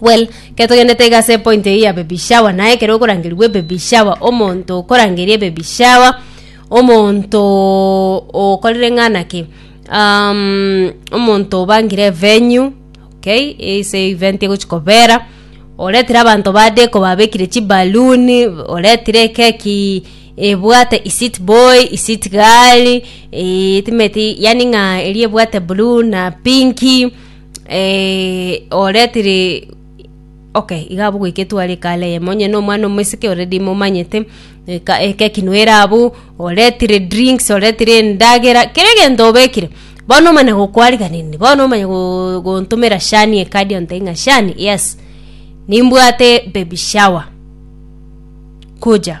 Well, ekero togenderete iga ase epoint eyio ya baby shower, naye ekero okorangerigwa ebaby shower, omonto okorangeria ebaby shower, omontoooo okorire ng'a na ki? aaamm omonto obangire evenue, okay, ase event egochia kobera, oretire abanto ba deco babekire chibaluni, oretire ekeki, ebwate iseat boy, iseat girl, eeeitimeti yaani ng'a eria ebwate blue na pinki. Eh, ore tiri okay iga abwo goika etware kala eyemo onye na omwana omosike already momanyete eka- ekeki no ere abwo oretire drinks oretire endagera kera egento obekire bono omana gokwarigereria bono omanya go- gontomera shani ekadi ontebie ng'a shani yes nimbwate baby shower kuja.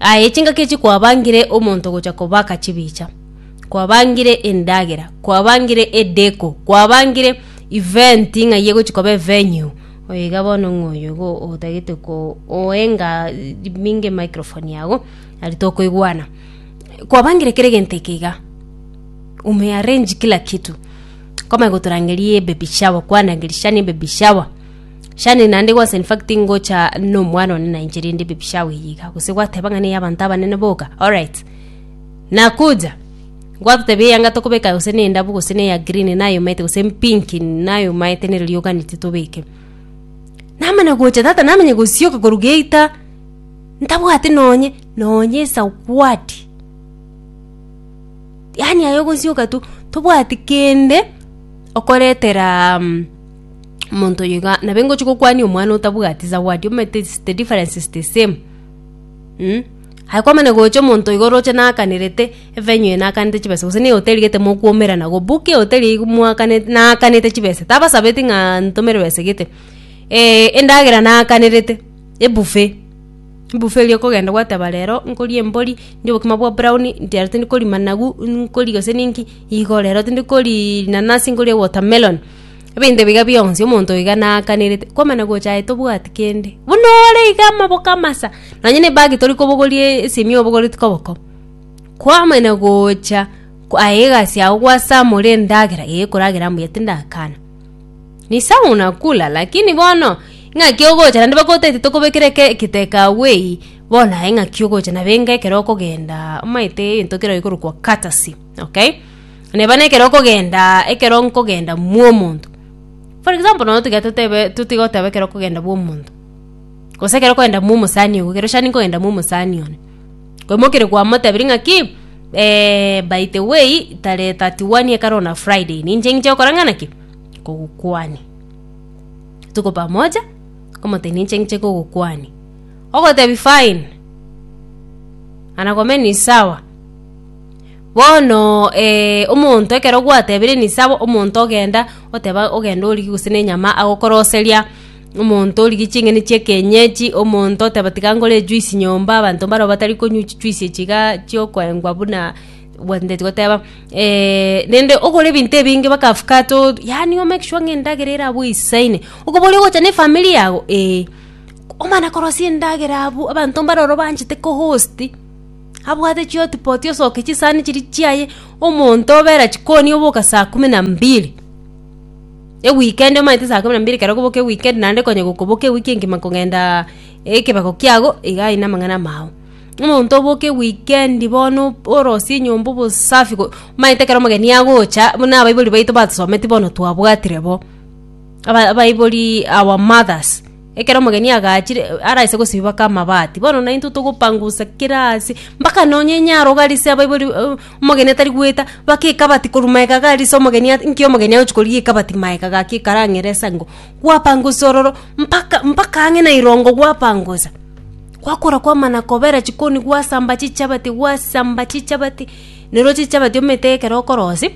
Aye chingaki echi kwabangire omonto gocha kobaka chibicha, kwabangire endagera, kwabangire edeko, kwabangire event ng'a eye egochi koba evenue, oyo iga bono ng'a oyo igo otagete ko oenga binge emicrophone yago nari tokoigwana. Kwabangire kera egento eke iga, ume arrange kila kitu, nkomanya gotorangeria ebaby shower, kwanangeria siana ebaby shower. Shani naende gwansa infact ngocha nomwana one na inche rinde baby shower eye iga gose gwateba ng'a neya abanto abanene boka alright nakuja gwatotebia eyanga tokobeka gose ne endabu gose ne eya green naye omaete gose empinki naye omaete nere rioka neti tobeke namana gocha tata namanya gosioka korwa geita ntabwate nonye nonye esagwadi yaani aye ogosioka tu tobwati kende okoretera mm. omonto oyo iga nabe ngochi gokwania omwana otabwati zawadi omanyete it's the difference is the same mm? aye kwamana gocha omonto oyo oroche nakanirete evenyo eye nakanete chibesa gose na ehoteli gete mokwoumerana go book ehoteli eywo mwakanete nakanete chibesa tabasabeti ng'a ntomere besa gete eh, endagera naakanete ebuffet ebuffet eria okogenda gwateba rero nkoria embori ndie obokima bwa brown nti rero tindi kori managu nkori gose ninki igo rero tindi kori rinanasi nkorie watermelon. Ebinto ebiga bionsi omonto oiga naakanerete, kwamana gocha aye tobwati kende. Buna ore iga amaboko amasa, nonye na ebagi tori kobogoria e- esimi obogoreti koboko. Kwamana gocha ko- aye egasi yago gwasamore endagera, ee ekoragera mbuya tindakana. Ni sawa unakula, lakini bono, ng'aki ogocha naende bagoteete tokobekere eke eketeka agwo eyie, bono aye ng'aki ogocha nabe enga ekero okogendaa omaete egento kero ekorokwa courtesy, okay. Naende bono ekero okogendaa ekero nkogenda mwomonto, for example nonye tiga totebe totigoteba ekero okogenda bwomonto, gose ekero okogenda mwomosani ogo ekero shani nkogenda mwomosani one, ko mokere kwamotebirie ng'aki by the way tarehe thirty one ekero na friday ninche ing'che gokora ng'ana ki kogokwania. Tuko pamoja omotebia ninche ing'che kogokwania, ogotebia fine, anakome ni sawa. Bono eh, omonto ekero gwatebirie nisabo omonto ogenda oteba ogenda origi gose nenyama agokoroseria omonto origi ching'eni chia ekenyechi omonto oteba tiga nkore ejuice nyomba abanto mbaro batari konywa chijuice echi iga chiokoengwa buna gwanchete goteba rende okore ebinto ebinge mpaka afkate o yaani o make sure ng'a endagera ere abwo eisaine okoboria ogocha na efamiri yago eeh, omana korosia endagera abwo abanto mbare ororo banchete ko host. Abwate chihotipoti osoke chisani chiria chiaye omonto obera chikoni oboka saa kumi na mbili ewikendi omanyete saa kumi na mbili ekero okoboka ewikendi naende konya gokoboka ewiki engima kong'endaa ekebeko kiago iga aye na amang'ana amao. Omonto oboka ewikendi bono orosie enyomba obosafi go omanyete ekero omogeni agocha buna abaibori baito batosometi bono twabwatire bo aba abaibori our mothers. Ekero omogeni agachire, araise gosibaka amabati, bono naintwe togopangusa kera ase, mpaka nonye nyarogo arise abaibori uh, omogeni atari goeta, bake ekabati korwa maega iga arise omogeni at- nki omogeni agochi korigia ekabati maega iga ki ekarang'ere ase engo, gwapangusa ororo mpaka mpaka ang'e na erongo gwapangusa, gwakora kwamana kobera chikoni gwasamba chichabati gwasamba chichabati, nero chichabati omanyete ekero okorosia.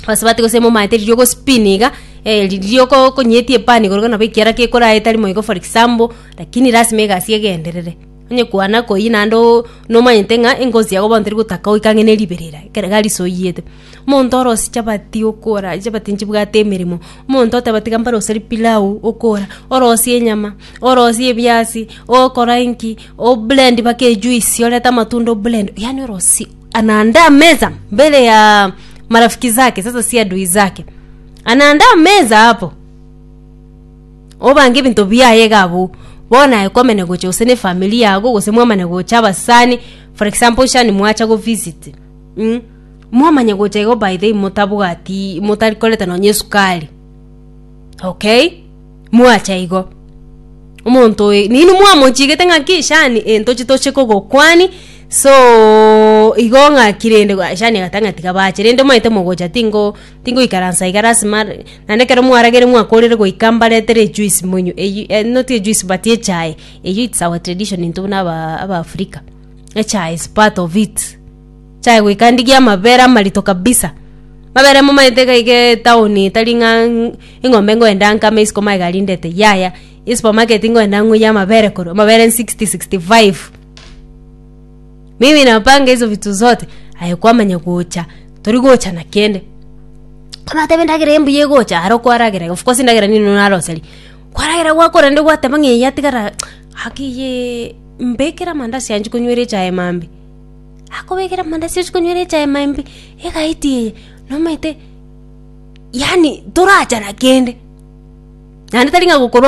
Basubati gose momaete riria ogospin iga eh, riria oko- okonyetie epani igoro nabo ekiara kekorae tari moigo for example lakini lasima egasi egenderere onye kwana koyi naende o- nomanyete ng'a engozi yago bono teri gotaka goika ang'e ne ribe rira ekero iga risoyete. Omonto orose chabati okora chabati nchibwate emeremo, omonto oteba tiga mbaroseri pilau okora, orosie enyama, orosie ebiasi, okora inki, o blend mpaka ejuice orete amatunda o blend yaani orosie. anaandaa meza mbele ya marafiki zake sasa si adui zake anaandaa meza hapo obange ebinto biaye iga abwo bono aye kwamane gocha gose ne famili yago gose mwamane gocha abasani for example shani mwacha go visit mm? mwamanye gocha igo by the way motabwati motari koreta nonye esukari okay Mwacha igo, omonto oyo neinwe mwamochigete ng'aki shani eh ntoche toche kogokwani, sooo igo ng'aki rende ah shani agata ng'a tiga bache rende omanyete mogocha tingo tingoikaransa iga lasima re naende ekero mwaragere mwakorire goika mbaretere echuisi monywe eywo eh not echuisi but echae, eywo its our tradition intwe buna aba abaafrika, echae is part of it. Chai goika ndigie amabere amarito kabisa, amabere momaete iga iga etaoni etari ng'a eng'ombe ngoenda nkame isiko ma egari ndete yaya, esupermarket ngoenda ng'oyie amabere korwa amabere sixty, sixty five. Mimi napanga hizo vitu zote aye kwamanya gocha tori gocha na kende, kwabateba endagera embuya egocha aro kwaragera of course endagera nigo naroseri, kwaragera gwakora rende gwateba ng'a eye atigara aki iyee mbekere amandazi yanje konywera echae mambia. akobekera amanda asesu konywera echae ime imbe, egati eye nomanyete yaani torachana kende, naende tari ng'a gokorwa.